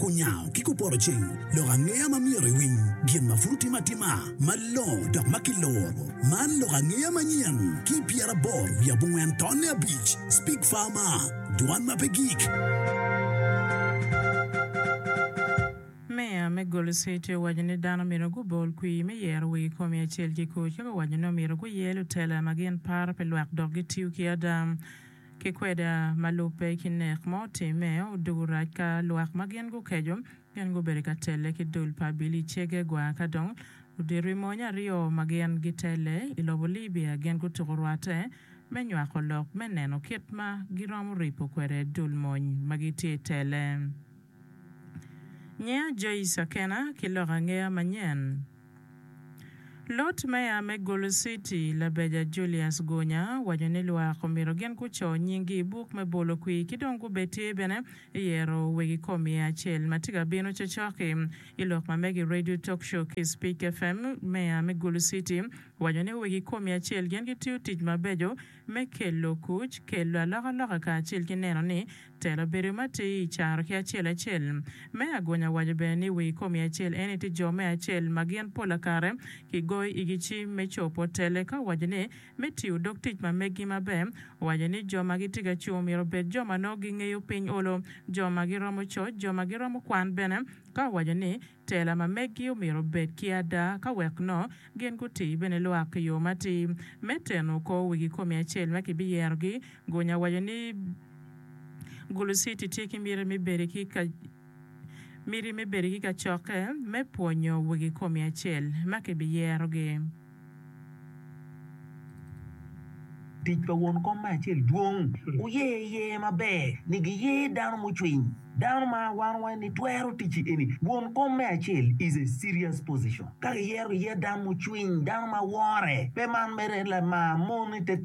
Kunyango ki kupoto cing lok angeya ma myero iwiny gin ma pud otime atima malongo dok ma kiluro. Man lok angeya manyen ki pyeraboro wiye abongwen tonne abic, Speak Farmer, Dwan ma pe gik. Meya me Gold City owaco ni dano myero gubol kwir me yero wigi komi acel ki kuc, eka owaco ni omyero guye lutela ma gin paro pi lwak dok gitiyo ki ada. Ki kweda ma lubbe ki nek ma otimme, odwogo rac ka lwak ma gin gukeco gin gubedo ka telle ki dul pa Abilicege gwa ka dong odito i mony aryo ma gin gitelle i lobo Libia gin gutuko rwatte me nywako lok me neno kit ma giromo ripo kwede dul mony ma gitye telle. Ngeya Joyce Akena ki lok angeya manyen. Lord Mayor me Gulu City, Labeja Julius Gunya, owaco ni lwak omyero gin guco nyinggi i buk me bolo kwir ki dong gubed tye bene i yero wegi kom iye acel ma tye ka bino cocoki. I lok ma mege i Radio Talk Show ki Speak FM, Mayor me Gulu City owaco ni wegi kom iye acel gin gitiyo tic mabeco me kelo kuc, kelo alokaloka kacel ki neno ni telo bedo matir i caro ki acel acel. Me agonya waco bene ni wi komi acel en ite jo me acel ma gin pola kare ki goyo igi cim me copo tele ka owaco ni me tiyo dog tic ma meggi maber owaco ni jo ma gitye ka cung myero obed jo ma nongo gingeyo piny olo, jo ma giromo coc, jo ma giromo kwan bene ka owaco ni Tela ma meggi omyero obed ki ada ka wek nongo gin guti bene lwak i yo matir. Me teno kor wi kikomi acel ma kibiyerogi, Gunya waco ni, Gulusiti tye ki miti me bedo ki ka miti me bedo ki kacokke me pwonyo wi kikomi acel ma kibiyerogi. Tic pa won kom me acel dwong. Wuye iye maber ni giye dano mucwiny. Dano ma wano waco ni twero ticci eni won kom me acel is a serious position. Ka giyero giye dano mucwiny, dano ma wore, pe man mere lamar mon i te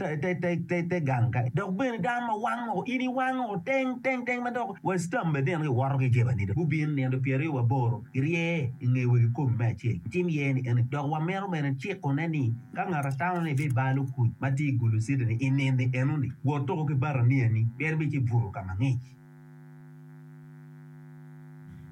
gang kany, dok bene dano ma wango in iwango teng teng teng ma dok wa stambe bene giwoto ki jebani dong gubin nino pyeraryo waboro. Girye i nge wegi kome me acel, gitim iye ni eni. Dok wamito bene cikone ni, ka ngat atamo ni ibir bal okuc ma tye i gulu citini i nini enoni, wot tuko ki baraniyani, pien ibir ci buto ka mangic.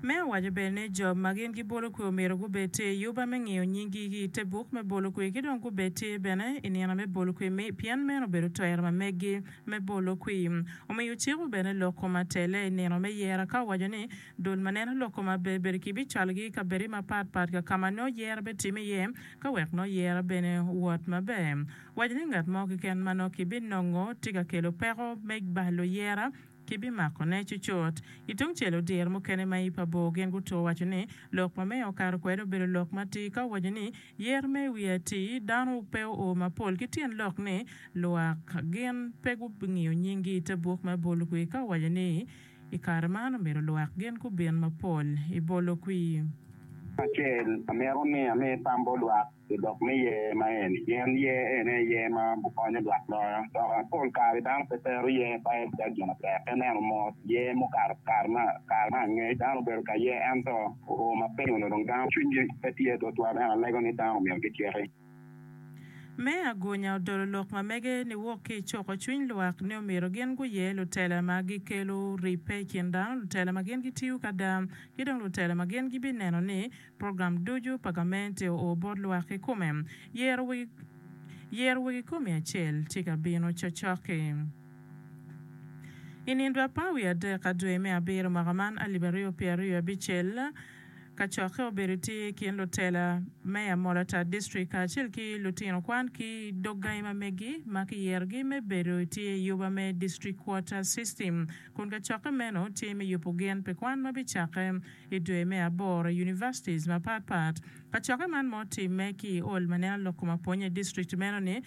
Me awaco bene ni jo ma gin gibolo kwe omyero gubed tye i yuba me ngiyo nyinggi ki i te buk me bolo kwe ki dong gubed tye bene i nino me bolo kwe mi pien meno obedo twero ma meggi me bolo kwe. Omiyo ociko bene lok kom atelle i nino me yera ka owaco ni, Dul ma neno lok kome aber bedo ki bicwalogi i kabedde mapat pat ka ka ma nongo yero bitimme iye ka wek nongo yero bene owot maber. Waco ni ngat mo keken ma nongo kibinongo tye ka kelo peko me ba luyera kibimakone cucut. Ki tungcel, odyere mukene ma i pa bor gin gutwo waco ni lok ma meya okato kwede obedo lok matir ka owaco ni, Yer ma i wi atir dano pe oo mapol ki tyen lok ni lwak gin pe gungiyo nyinggi i te buk me bolo kwir ka owaco ni, I kare man omyero lwak gin gubin mapol i bolo kwir. Nino acel amito ni ami tam bot lwak i lok me yer ma eni, pien yer eni aye yer ma bikonyo lwak loyo. Dok pol kare dano pe tero yer pa en calo gin matek. Ka ineno mot yer mukato kare ma angec dano obedo ka yer ento oo ma piny onongo dong dano cwinygi pe tye tutwal ento alego ni dano omyero giciki. Me agunya odolo lok ma mege ni wok ki i cuko cwiny lwak ni omyero gin guye lutela ma gikelo ribbe i kin dano, lutela ma gin gitiyo kada, ki dong lutela ma gin gibineno ni program ducu pa gamente oo bot lwak kikome. Yero wegi Yero wegi komi acel tye ka bino cocoki. I nindo apar wiye adek ka dwe me abiro mwaka man alip aryo pyeraryo abicel, kacokke obedo tye i kin lutela, meya Molata District kacel ki lutino kwan ki dog gangi ma megi ma kiyerogi me bedo tye i yuba me District Quota System kun kacokke meno tye me yubo gen pi kwan ma bicakke i dwe me aboro i Universities mapat pat. Kacokke man ma otimme ki i ol ma neno lok kom apwonya i District meno ni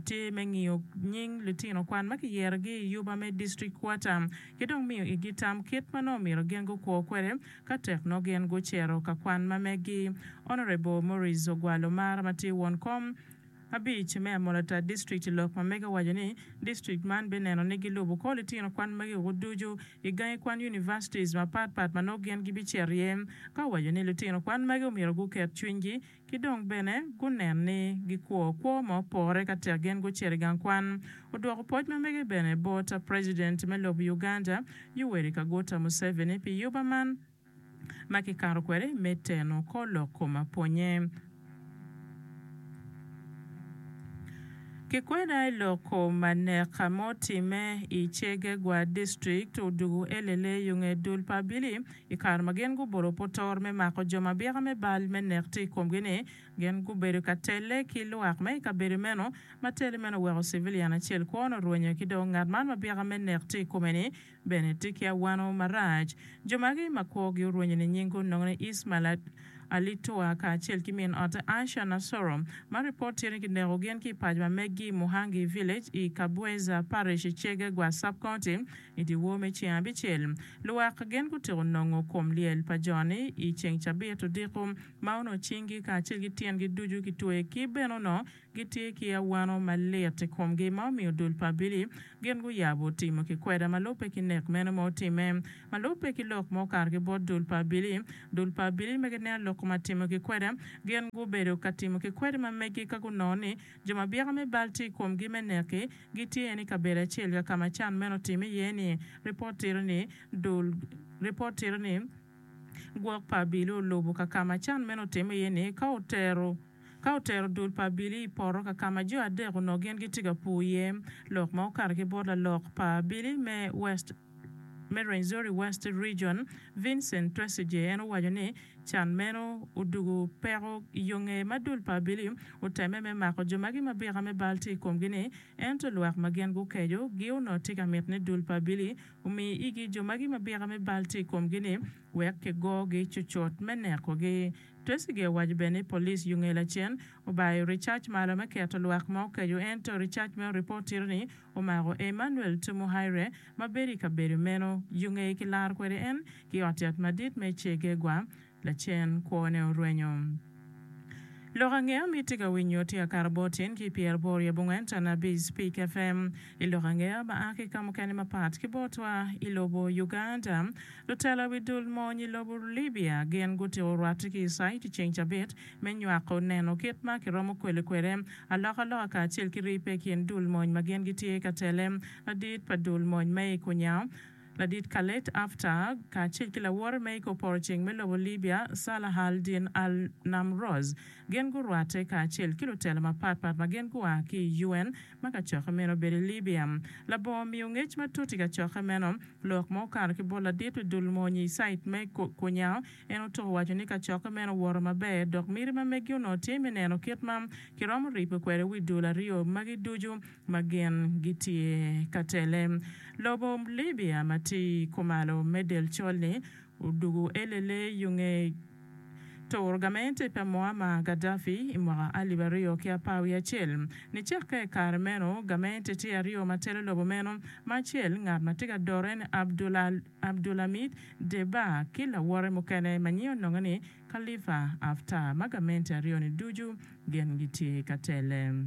tye me ngiyo nying lutino kwan ma kiyerogi i yuba me District Quota ki dong miyo igi tam kit ma nongo omyero gen gukwo kwede Ka tek nongo gin gucito ka kwan ma megi, Honourable Maurice Ogwal Omar ma tye won kom abic me Amolatar District i lok ma mege owaco ni District man be neno ni gilubo ko litino kwan magi woko ducu i gangi kwan Universities mapat pat ma nongo gin gibicito iye ka owaco ni litino kwan magi omyero guket cwiny gi Ki dong bene gunen ni gikwo kwo ma opore ka tek gin gucito i gang kwan. Odwoko pwoc ma mege bene bot President me lobo Uganda, Yoweri Kaguta Museveni pi yuba man ma kikato kwede me teno kor lok kom apwonye ki kwena i lok kom anek ma otimme i Chegegwa District, Odugu Elele, yo nge dul pa Abili. I kare ma gin gubolo putor me mako jo ma byeka me bal me nek tye i komgi-ni, gin gubedo ka telle ki lwak ma i kabedo meno. Ma tele meno oweko civilian acel kwone orwenyo ki dong ngat man ma byeka me nek tye i kome-ni bene tye ki awano marac. Jo magi ma kwogi orwenyo ninying gunongone Ismail Alitoa kacel ki min ote Aisha Nassoro, ma ripot tye ni kineko gin ki i paco ma meggi i Muhangi Village i Kabweza Parish i Chegegwa Sub-County. I dyewor me ceng abicel, luwak gen gutyeko nongo kom lyel pa jo-ni i ceng cabit odiko, ma onongo cinggi kacel ki tyengi ducu kitweyo ki bene onongo gitye ki awano malit i komgi ma omiyo dul pa abili gin guyabo timo kikweda ma lubbe ki nek meno ma otimme. Ma lubbe ki lok ma okato ki bot dul pa abili, dul pa abili ma gineno lok ma timo kikweda, gin gubedo ka timo kikwed ma megi ka gunongo ni Jo ma byeka me bal tye i komgi me neki gitye en i kabedo acel ka ka ma can meno otimme iye-ni. Ripot tito ni, Dul Ripot tito ni, Gwok pa abili olubo ka ka ma can meno otimme iye-ni ka otero ka otero dul pa abili i poto ka ka ma jo adek onongo gin gitye ka pur iye. Lok ma okato ki bot lalok pa abili me West. me Rwenzori West Region, Vincent Twesigye en owaco ni can meno odugo peko yo ngeye ma dul pa Abili otemme me mako jo ma gimabika me bal tye i komgi ni ento lwak ma gin gukeco gi onongo tye ka miti ni dul pa Abili omi igi jo ma gimabika me bal tye i komgi ni wek kigogi cucut me neko gi. Twesigye owaco bene ni police Yungela cen obayo recac malo me keto lwak ma okeco ento recac meno report tito ni Omako Emmanuel Tumuhairwe ma bedo i kabedo meno yo ngeye ki laro kwede en ki ot yat madit me Che Guegwa lacen kwone orwenyo. Lok ange ami tye ka winyo tye ka kato bot tyen ki pyer boro i abongwen can abic Peak FM i lok ange ma a ki kamukene mapat ki botwa i lobo Uganda. Lutela wi dul mony i lobo Libya gin gutiko rwate ki i cite ceng cabit me nywako neno kit ma kiromo kwele kwede alokaloka kacel ki ribbe i kin dul mony ma gin gitye ka tele, ladit pa dul mony me Ikunya, Ladit Khaled Haftar, kacel ki lawote me Ikoporoceng me lobo Libya, Salah al-Din al-Namroz. Gin gurwatte kacel ki lutela mapatpat ma gin gua ki i UN ma kacokke meno obedo i Libya. Labongo omiyo ngec matut i kacokke meno, lok ma okato ki bot ladit pa dul mony i Cite me Ikunya, En otuko waco ni kacokke meno owoto maber dok miti ma megi onongo tye me neno kit ma kiromo ripe kwede wi dul aryo magi ducu ma gin gitye ka tele. Lobo Libya ma tye kumalo me del col-li odwogo elele yo nge turo gamente pa Muammar Gaddafi i mwaka alip aryo ki apar wiye acel. Nicakke i kare meno, gamente tye aryo ma telo lobo meno, ma acel ngat ma tye ka dore-ni Abdul Abdulhamid Deba ki lawote mukene ma nyinge ononge ni Khalifa Haftar ma gamente aryo ni ducu gin gitye ka tele.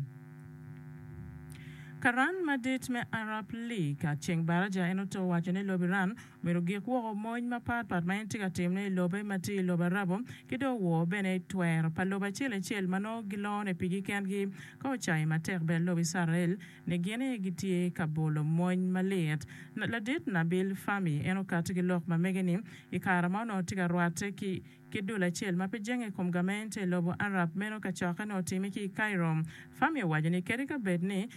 Karan madit me Arab League a ceng baraja en oto owaco ni lobo Iran omyero gik woko mony mapat pat ma en tye ka timone i lobe ma tye i lobo Arabo ki dong owor bene twero pa lobo acel acel ma nongo gilone pigi kengi ka ocayo matek bene lobo Icrael ni gin aye gitye ka bolo mony malit. Ladit Nabil Fahmy en okato ki lok ma mege ni, I kare ma onongo tye ka rwatte ki ki dul acel ma pe jenge i kom gamente i lobo Arab, meno kacokke onongo otime ki i Cairo. Fahmy owaco ni kadi ka bed ni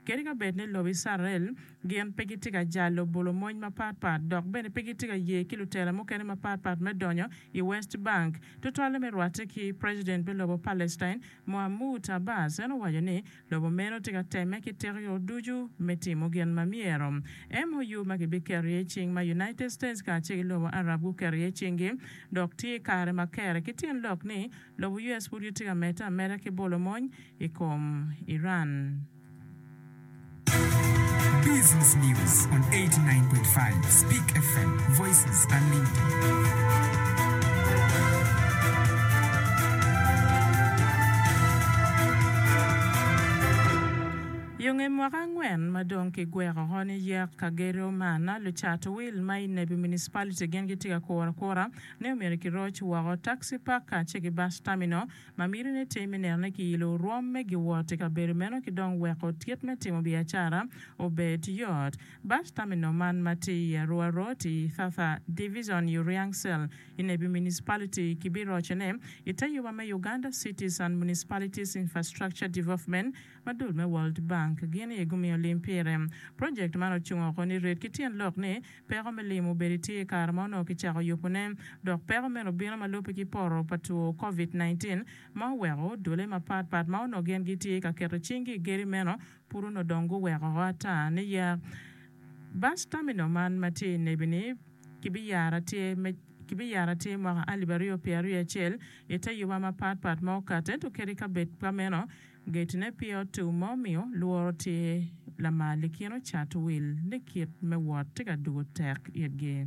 kadi ka bed ni lobo Icrael gin pe gitye ka jalo bolo mony mapat pat dok bene pe gitye ka ye ki lutela mukene mapat pat me donyo i West Bank, tutwalle me rwatte ki President me lobo Palestine, Mahmoud Abbas, en owaco ni, Lobo meno tye ka temme ki teko yo ducu me timo gin ma myero. MOU ma kibiketo iye cing ma United States kacel ki lobo Arab guketo iye cinggi dok tye i kare ma kere ki tyen lok ni lobo US pud gitye ka medde ameda ki bolo mony i kom Iran. Yo nge mwaka angwen ma dong ki gweko oko ni yek ka gedo man, lucat wil ma i Nebbi Municipality gin gitye ka kuro akura ni omyero ki roc woko taxi park kacel ki bus terminal ma miti ni tim me neno ni ki ilo orwom me giwot i kabedo meno ki dong weko tit me timo biacara obed yot. Bad tamino man ma tye i Arua Road i Thatha Divizon i Uriang Cell i Nebi Municipality kibirocone i te yuba me Uganda Cities and Municipalities Infrastructure Development ma dul me World Bank gin aye gumiyo lim pire. Project man ocung oko ni red ki tyen lok ni peko me lim obedi tye i kare ma onongo kicako yubone dok peko meno obino ma lubbe ki poto pa two Covid nineteen ma oweko odole mapat pat ma onongo gin gitye ka keto cinggi i geri meno Pud onongo dong guweko ata niya, Bus terminal man ma tye i Nebi-ni kibiyaro atir me kibiyaro atir mwaka alip aryo pye aryo acel i te yuba mapat pat ma okato, ento kadi ka bed ka meno, getine pye otum ma omiyo lworo tye lamal i kin ocat wil ni kit me wot tye ka dugo tek itgi.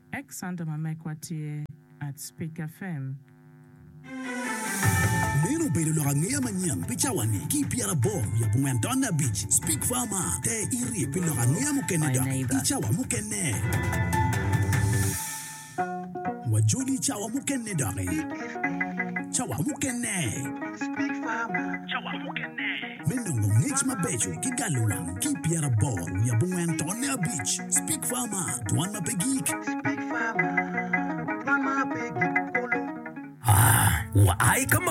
Ex Santa ma mekwa tye at Spik FM. Meno obedo lok angeya manyen pi cawani ki pyera aboro wiye abongwen tonne abic. Spik fa ma, te irie pi lok angeya mukene dok i cawa mukene. Wajoli i cawa mukene doki. Cawa mukene. Spik fa ma. Cawa mukene. me nongo ngec mabeco ki galo wang ki i pyeraboro wiye abongwen tonne abic. Speak Farmer, dwan ma pe gik. Speak Farmer, dwan ma pe gik kulu. Aa, wa ai ka